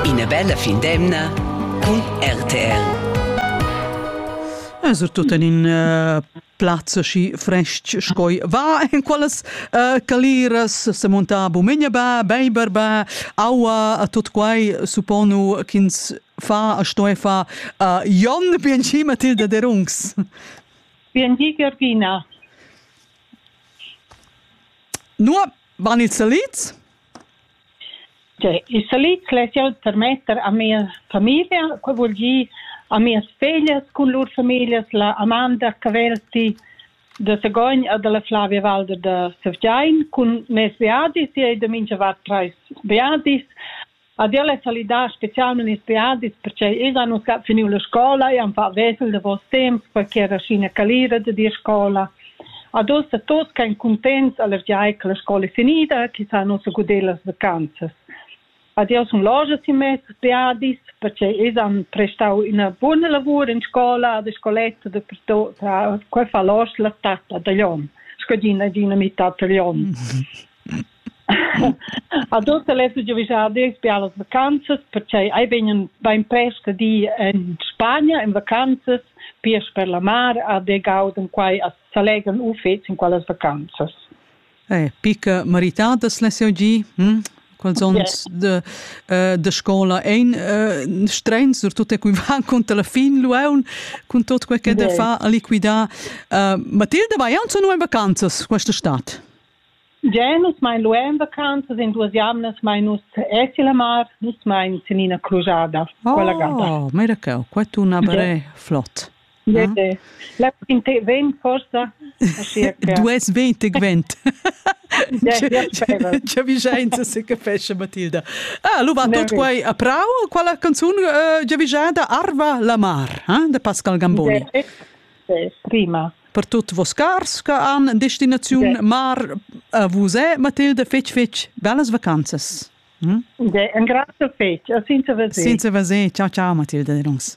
Ina bella fin d'emna cun RTL. Eh, surtut en in uh, plaz aschi frestg sco va en quellas uh, caliras se monta bumegna ba, beiber ba, aua a tot quai supponu ch'ins fa a sto fa uh, Jon Bienci Matilda de Rungs. Bienci Georgina. Nu van ils salids? Tgei il salit less jeu tarmetter a mia famiglia, quei vul gir a mias feglias cun lur famiglias, la Amanda Cavelti da Sagogn e dalla Flavia Walder da Sevgein cun mes beadis. Ella ei da mintga vart trais beadis. Ad ella ei salidà specialmein ils beadis pertgei els han ussa finiu la scola e han fat vesel davos temps, perquei era Sina Calira da dir scola. Ad ussa tutgan cuntents allergiacs alla scola finida chi sa nossa gudellas vacanzas. Ad eu sun loja simez viadis perche els han prestau üna buna lavur in scola da scoletta dapertut. Qua fa l'ost la tappa da Glion, scadina d'ina mità da Glion. A tuot las giuvischadis bialas vacanzas, perche ei vegn bein prest a dir en Spagna en vacanzas, piars per la mar, a de gauden quai a s'allegran uffets in quellas vacanzas. Eh, picca meritadas les jau gi? Hm? Quels onns de, uh, de scola ein uh, strens, surtut e cui van conta la fin luaun, cun tot quei che de fa a liquidar. Uh, Matilda, vai aunc nu en vacanzas questa stat? Gia nus mein lu en vacanzas en duas jamnas mein nus esi la mar, nus mein sin ina crujada. Quella gada. Oh, miracau, quei tun aber è flott. Ja. La quinte vent forsa? Dues vent e gvent. C'è vigenza se capesce Matilda. Ah, lu va tut quei a prau, quella canzun uh, giavigada Arva la mar, eh, de Pascal Gamboni. Prima. Per tut vos cars che han en destinaziun de. mar a vus è Matilde fetg fetg bellas vacanzas. Hm? De, en grazie fetg, senza vesè. Senza vesè, ciao ciao Matilde, dirons.